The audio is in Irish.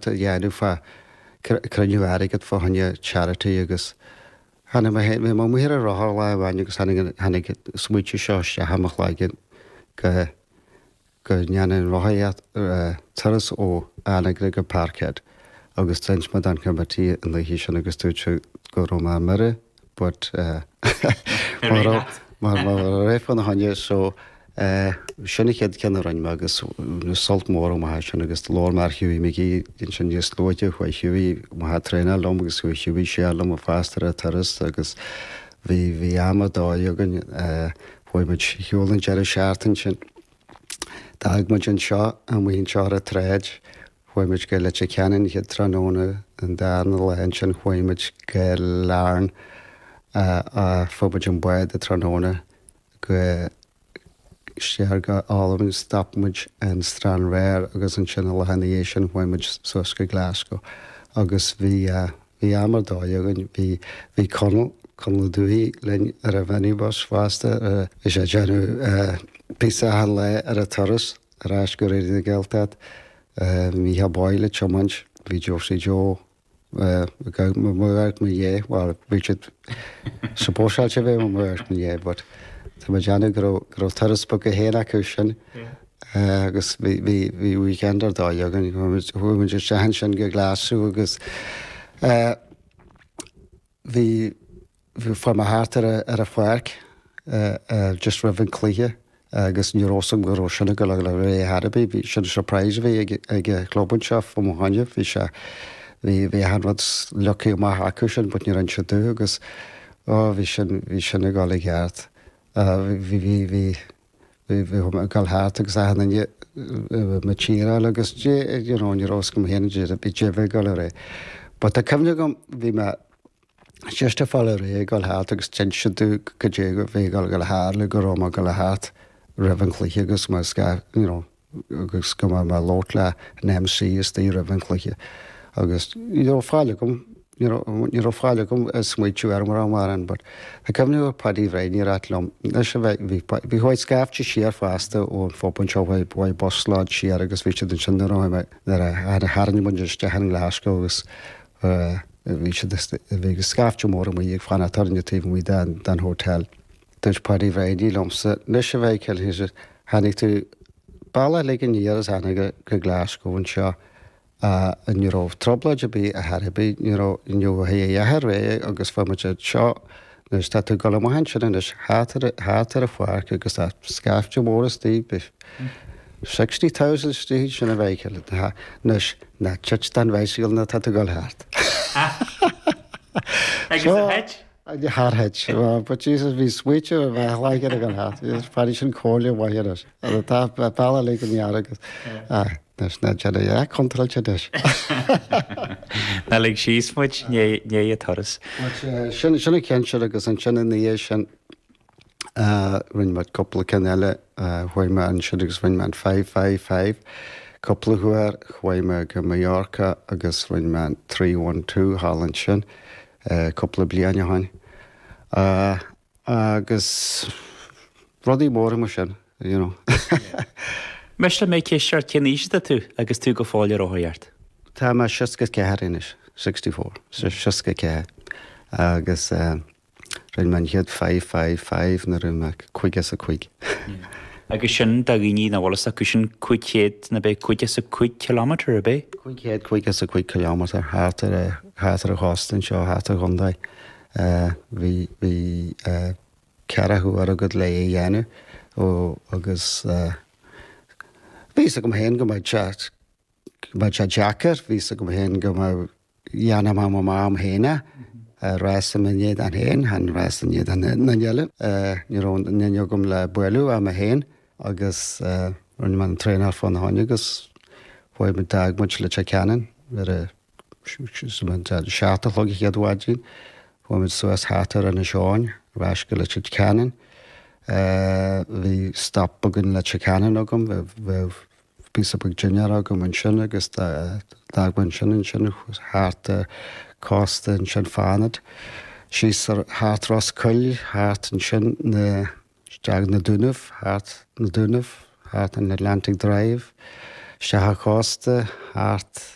Dhéanamh fá cruinniú airgead fá choinne charity agus tháinig mé féin, bhí mé amuigh ar an rothar lá amháin agus tháinig an smaoitiú seo isteach i mo chloigeann go go ndéanfainn an rothaíocht, turas ó Anagaire go Parkhead agus d'inis mé don committee an oíche sin agus dúirt siad go raibh mé ar mire. but mar a raibh fána choinne so sin an chéad cheann a rinne mé agus bhain mé sult mór amach as sin agus labhair mé ar Hughie McGee ansin níos luaithe chuaigh Hughie amach ag traenáil liom agus chuaigh Hughie siar liom fosta ar an turas agus bhí bhí am ar dóigh againn chuaigh muid ar shiúl an deireadh seachtaine sin d'fhág muid anseo amuigh anseo ar an tsráid Chuaigh muid go Leitir Ceanainn an chéad tráthnóna, an darna lá ansin chuaigh muid go Larne ach fuair muid an bád an tráthnóna go siar go hAlbain stop muid in Stranraer agus ansin an lá ina dhiaidh sin chuaigh muid suas go Glasgow agus bhí bhí am ar dóigh againn. Bhí bhí Conall, Conall Ó Dubhthaigh linn ar an mhinibus fosta bhí sé ag déanamh píosa achan lá ar an turas. Ar ais go Raidió na Gaeltacht. Mícheál Boyle ag tiomáint. Bhí Josie Joe ag amharc i mo dhiaidh. Bhuel, bhí siad supposeáilte a bheith ag amharc i mo dhiaidh but tá mé déanamh go raibh, go raibh turas bog go héin acu sin. Agus bhí, bhí, bhí weekend ar dóigh againn. Chuaigh muid isteach ansin go Glaschú agus bhí, Fuair mé thart ar an pháirc just roimh an cluiche agus ní raibh 'fhios agam go raibh sin ag dul ar aghaidh ar chor ar bith. Bhí, sin surprise a bhí ag an chlub anseo fá mo choinne. Bhí sé, bhí, bhí achan rud leagtha amach acu sin but níor inis siad domh agus á, bhí sin, bhí sin ag dul i gceart. Bhí, bhí, bhí, bhí, bhí mé ag dul thart agus achan duine ag cheeráil agus you know ní raibh 'fhios acu féin caidé a bhí ag dul ar aghaidh. But tá cuimhne agam, bhí mé, Just ag fáil réidh le dhul thart agus d'inis siad go dtí go bhféich Aodh le hAirle go raibh mé ag dul thart roimh an chluiche agus mé sca, you know, agus go mbeadh mé ag labhairt leis an MC istoigh roimh an chluiche agus ní raibh faill agam, you know, ní raibh faill agam smaoitiú ar mhórán mar sin but I can remember Paddy Bhrianaí ag ráit liom anois a bheith, bhí Pa, chuaigh scaifte siar fosta ón phub anseo chuaigh, chuaigh busload siar agus bhí siad ansin nuair a tháinig mé, nuair a tháinig, tharraing muid isteach i nGlaschú agus a bhí siad ag a bhí ag scaifte mór amuigh ag fanacht orainn ag taobh amuigh den den hotel. Dúirt Paddy Bhrianaí liomsa anois a bhuachaill, a deir sé, tháinig tú an bealach uilig aniar as Anagaire go Glasgow anseo agus ní raibh trioblóid ar bith ar chor ar bith, ní raibh you know a dhath a dhath ar bith agus fuair muid é anseo Anois tá tú gul amach ansin anois thart ar an pháirc agus tá scaifte mór istigh, beidh sixty thousand istigh ansin a bheidh aige le anois ná tit den bhicycle nuair atá tú gul thart. Agus ar thit? Char thit. But Jesus bhí smaointe a bheith laigean againn thart. Is fada sin comhairle mhaith anois. An tá pealla lig an fhear agus Anois ná déan é contráilte anois. Ná lig síos muid, gné a' turas. Sin sin an ceann sin agus ansin ina dhiaidh sin rinne muid cúpla ceann eile. Chuaigh mé ansin agus rinne mé an five five five cúpla huair. Chuaigh mé go Mallorca agus rinne mé an three one two thall ansin cúpla bliain ó shoin. Agus rudaí móra mar sin, you know. Miste liom ceist ort, cén aois atá tú agus tú go fóill ag rothaíocht? Tá mé seasca ceathair anois, sixty four, so seasca ceathair. Agus eh rinne mé an chéad five five five nuair a bhí mé caoga is a cúig. Agus sin do dhaoine nach bhfuil fhios acu sin cúig chéad ab é caoga is a cúig kilometre ab é? Cúig chéad caoga is a cúig kilometre thart ar eh thart ar an chósta anseo thart ar an chontae. Eh, bhí, bhí eh, ceathracha uair agat le a dhéanamh. Ó, agus eh, bhí fhios agam fhéin go mbeadh sé, go mbeadh sé deacair, bhí fhios agam fhéin go mbeadh, dhéanfadh mé, mé liom fhéin é, eh, rás i m'éadan fhéin, chan rás in éadan aon duine eile. Eh, ní raibh aon duine agam le bualadh ach mé fhéin agus eh, rinne mé an traenáil fána choinne agus bhuel, d'fhág muid Leitir Ceanainn ar a, Sular an seacht a chlog an chéad mhaidin, chuaigh muid suas thart ar Inis Eoghain, ar ais go Leitir Ceanainn. Bhí stop beag i Leitir Ceanainn agam, bheadh píosa beag dinnéar agam ansin agus d'fhág muid ansin. Ansin thart ar cósta ansin Fánaid, síos thart Ros Goill, thart ansin isteach na Dúnaibh, thart na Dúnaibh, thart an Atlantic Drive, isteach an cósta, thart.